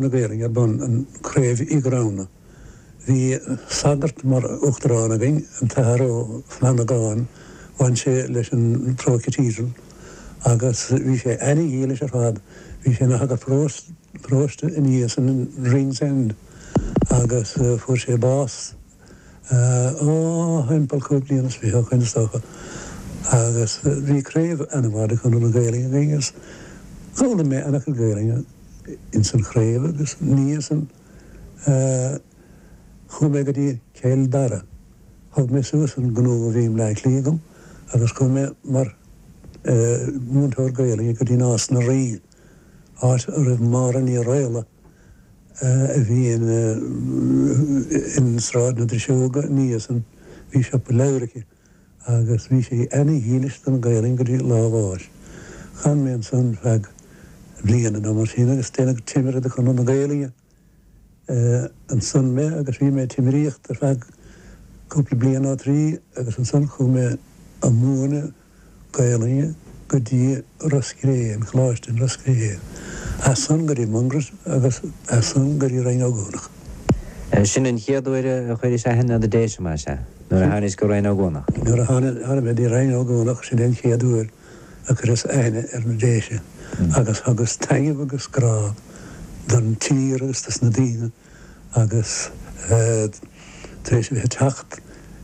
na Gaelainne ar bun an craobh Uí Ghramhnaigh. Bhí sagart mar uachtarán againn, an tAthair Ó Flannagáin, bhain sé leis an Pro-Cathedral agus bhí sé ana-dhílis ar fad, bhí sé ina shagart paróiste ina dhiaidh san in Ringsend agus fuair sé bás thimpeall cúig bliana is fiche ó shoin, is dócha, agus bhí craobh an-mhaith de Chonradh na Gaelainne againn agus d'fhoghlaim mé an-chuid Gaelainne ins an chraobh agus ina dhiaidh san chuaigh mé go dtí Cill Dara. Thug mé suas an gnó a bhí i mBleá Cliath agam agus chuaigh mé mar mhúinteoir Gaelainne go dtí Nás na Rí, áit a raibh Máire Ní Raghallaigh, a bhí ina in Sráid na Driseoige ina dhiaidh san, bhí siopa leabhar aici agus bhí sí ana dhílis don Ghaelainn go dtí lá a bháis. D'fhan mé ansan feadh bliana ná mar sin agus déanadh timire de Chonradh na Gaelainne ansan mé agus bhí mé ag timiríocht ar feadh cúpla bliain ná trí agus ansan chuaigh mé ag múineadh Gaelainne go dtí Ros Cré, an Coláiste in Ros Cré, as san go dtí Mungret agus as san go dtí Rinn Ó gCuanach. Sin an chéad uair a chuiris aithne ar na Déise, más ea, nuair a thánaís go Rinn Ó gCuanach. Nuair a tháinig mé dtí Rinn Ó gCuanach, sin é an chéad uair a cuireas aithne ar na Déise agus thugas taitneamh agus grá don tír agus dos na daoine agus tar éis a bheith ag teacht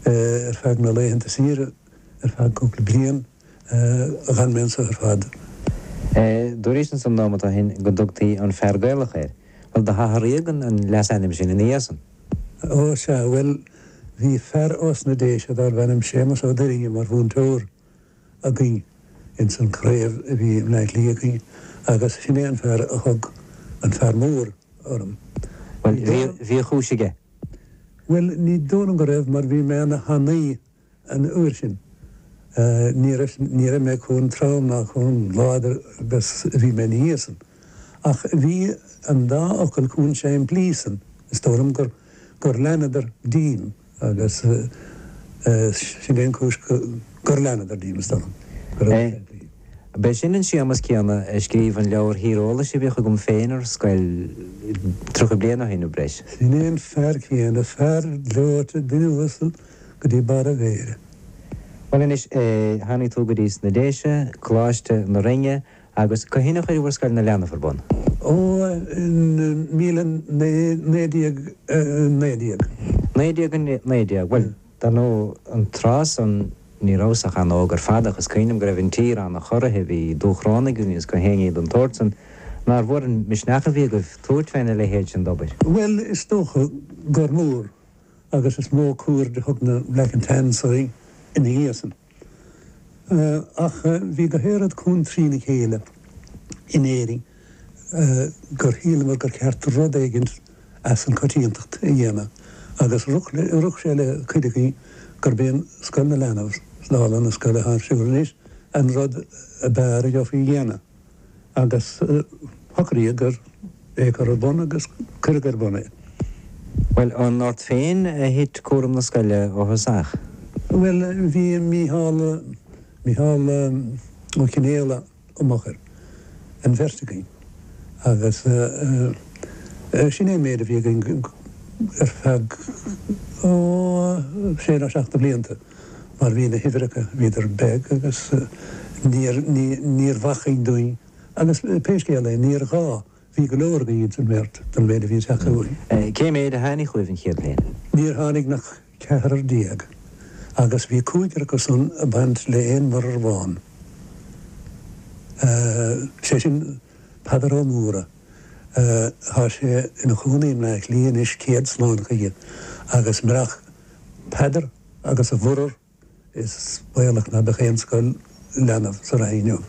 ar feadh na laethanta saoire, ar feadh cúpla bliain, d'fhan mé anseo ar fad. Dúraís ansan nóimeat ó shin go dtugtaí an Fear Gaelach ort. Bhuel, do hathraíodh an leasainm sin ina dhiaidh san. Ó, sea, bhuel, bhí fear ós na Déise darbh ainm Séamas Ó Duirinne mar mhúinteoir againn ins an craobh a bhí i mBleá Cliath againn agus sin é an fear a thug An Fear Mór orm. Bhuel, bhí a chúis aige. Bhuel, ní dóigh liom go raibh mar bhí mé ana thanaí. An uair sin, ní raibh mé chomh trom ná chomh láidir agus a bhí mé ina dhiaidh san, ach bhí an dá fhocal chomh simplí san, is dóigh liom gur leanadar díom agus sin é an chúis gur leanadar díom, is dóigh liom, go raibh siad simplí. B'é sin an Séamas céanna a scríobh an leabhar thíreolais a bhíodh agam féin ar scoil tríocha bliain ó shin nó breis. Sin é an fear céanna, fear gleoite, duine uasal. go dtí barr a mhéire. Bhuel anois, tháinig tú go dtí sna Déise, Coláiste na Rinne, agus cathain a chuir sibh Scoil na Leanbh ar bun? Ó, i míle naoi, naoi déag naoi déag. Naoi déag a naoi déag. Bhuel, dar ndóigh, an tráth san, ní rabhas ach an-óg ar fad, ach is cuimhin liom go raibh an tír an-chorraithe, bhí Dúchrónaigh againn agus gach aon ní den tsórt san. Nár mhór an misneach a bhí agaibh tabhairt fé na leithéid sin d'obair? Bhuel, is dócha gur mór. agus is mó cuaird a thug na Black and Tans orainn ina dhiaidh san. Ach bhí gach aon rud chomh trí na chéile in Éirinn gur shíleamar gur cheart rud éigin as an coitiantacht a dhéanamh agus rith sé le cuid againn gurb é Scoil na Leanbh, dála na scoile athá ar siúl anois, an rud ab fhearr a gheofaí a dhéanamh. agus shocraíodar é a chur ar bun agus cuireadh ar bun é. Bhuel, an ort féin a thit cúram na scoile ó thosach? Bhuel, bhí Mícheál, Mícheál Ó Cionfhaola i m'fhochair, an bheirt againn, agus sin é an méid a bhí againn ar feadh, ó, sé nó seacht de bhlianta. mar bhí na huimhreacha, bhíodar beag agus níor, níorbh acmhainn dúinn agus pé scéal é, níor ghá, bhí go leor againn ins an mbeirt don mhéid a bhí ag teacht chughainn. Cén méid a tháinig chugaibh an chéad bhliain? Níor tháinig nach ceathrar déag agus bhí cúigear acu san a' baint le aon mhuirear amháin, sé sin Peadar Ó Mórdha, thá sé ina chónaí i mBleácliath anois, céad slán chuige agus murach, Peadar agus a mhuirear is baolach ná beadh aon Scoil Leanbh sa Rinn inniu.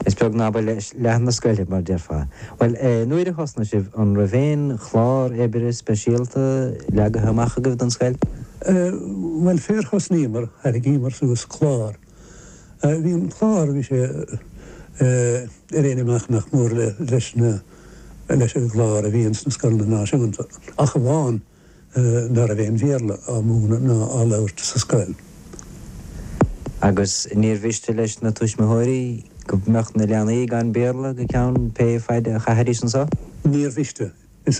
Is beag ná ba leis leath na scoile, mar déarfá. Bhuel, nuair a thosnaigh sibh, an raibh aon chlár oibre speisialta leagaithe amach agaibh don scoil? Bhuel, fé ar thosnaíomar, thairgíomar suas clár. Bhí an clár, bhí sé ar aon imeacht nach mór leis na, leis an gclár a bhí ins na scoileanna náisiúnta, ach amháin ná raibh aon Bhéarla á múineadh ná á labhairt sa scoil. Agus níor mhiste leis na tuismitheoirí go mbeadh na leanaí gan Béarla go ceann pé faid a chaithfidís anseo. Níor mhiste.